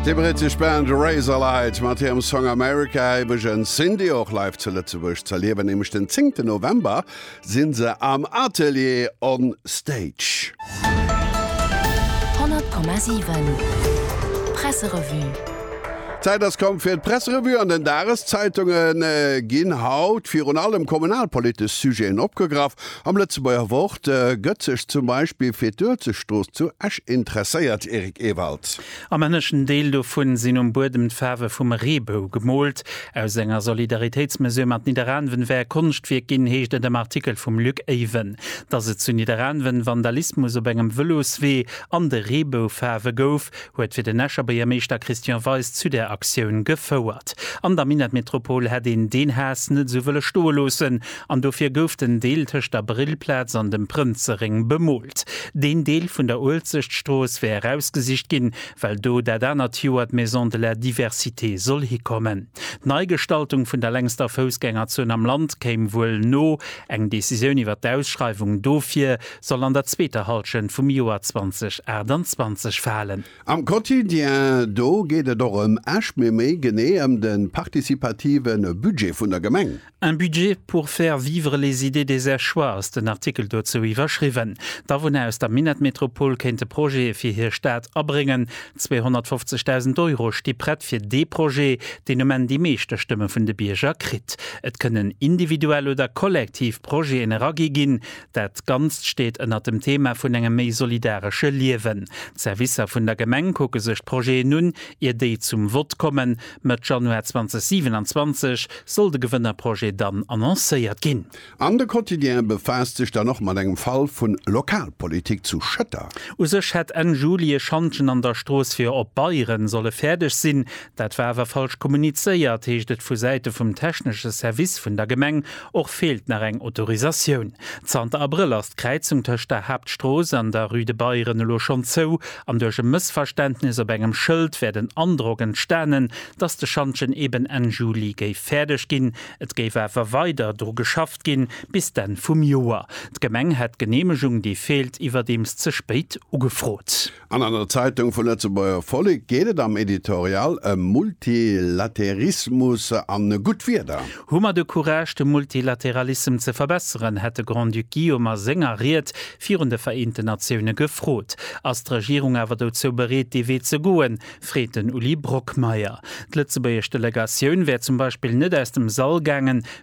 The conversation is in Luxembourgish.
Déi brittesch Band Razorlight mat hirem Song America hei bei Jeunes Indie och live zu Lëtzebuerg z'erliewen. Nämlech den 10 ten November si se am Atelier on Stage. 100,7 Presserevue. D'Zäit ass komm fir d'Presserevue an den Dageszeitungen ginn haut virun allem kommunalpolitesch Sujeten opgegraff. Am Lëtzebuerger Wort gëtt sech zum Beispill fir d'Uelzechtstrooss zu Esch interesséiert, Eric Ewald. Am ënneschten Deel dovun sinn um Buedem d'Faarwe vum Reebou gemoolt. Aus enger Solidaritéitsmesure mat Nidderaanwen wär e Konschtwierk ginn, heescht et am Artikel vum Luc Eyven. Dass et zu Nidderaanwen Vandalismus op engem Vëloswee an de Reeboufaarwe gouf, huet fir den Escher Buergermeeschter Christian Weis zu där Aktioun gefouert. An der Minettmetropol hätt een deen Haass net esou wëlle stoe loossen an dofir gouf den Deel tëscht der Brillplaz an dem Prënzeréng bemoolt. Deen Deel vun der Uelzechtstrooss wär erausgesicht ginn, well do dat anert Joer d'Maison de la Diversité soll hikommen. D'Neigestaltung vun der längster Foussgängerzon am Land kéim wuel no. Eng Decisioun iwwer d'Ausschreiwung dofir soll an der zweeter Hallschent vum Joer 2028 falen. Am Quotidien do geet et och ëm Esch, mee méi genee ëm de partizipative Budget vun der Gemeng. Un budget pour faire vivre les idées des Esch'ois ass den Artikel dozou iwwerschriwwen. D'Awunner aus der Minettmetropol kéinte Projete fir hir Stad abréngen. 250.000 Euro sti prett fir dee Projet, deen um Enn déi meeschte Stëmme vun de Bierger kritt. Et kënnen individuell oder kollektiv Projeten eragi ginn. Dat Ganzt steet ënnert dem Thema vun engem méi solidaresche Liewen. D'Servicer vun der Gemeng kucke sech d'Projeten un, ier déi zum Vott kommen. Mëtt Januar 2027 soll de Gewënnerprojet dann annoncéiert ginn. An de Quotidien befaasst sech dann och mat engem Fall vun Lokalpolitik zu Schëtter. U sech hätt Enn Juli e Schantjen an der Strooss fir op Beieren solle fäerdeg sinn. Dat war awer falsch kommunizéiert, heescht et vu Säite vum technesche Service vun der Gemeng. Och feelt nach eng Autorisatioun. Zanter Abrëll ass d'Kräizung tëscht der Haaptstrooss an der Rue de Beieren elo schonn zou an duerch e Mëssverständnis op engem Schëld wär den Androck entstanen, dass de Schantjen eben Enn Juli géif fäerdeg ginn. Et géif awer weider dru geschafft ginn, bis d'Enn vum Joer. D'Gemeng hätt d'Geneemegung, déi feelt, iwwerdeems ze spéit ugefrot. An an der Zeitung vu Lëtzebuerger Vollek geet et am Editorial ëm Multilaterismus an gutt Wieder. Hu mer de Courage de Multilateralissem ze verbesseren? hätt de Grand-Duc Guillaume a senger Ried virun de Vereenten Natioune gefrot. Ass d'Regierung awer dozou bereet, dee Wee ze goen? freet den Uli Brockmeyer. D'lëtzebuergesch Delegatioun wär zum Beispill net aus dem Sall gaangen,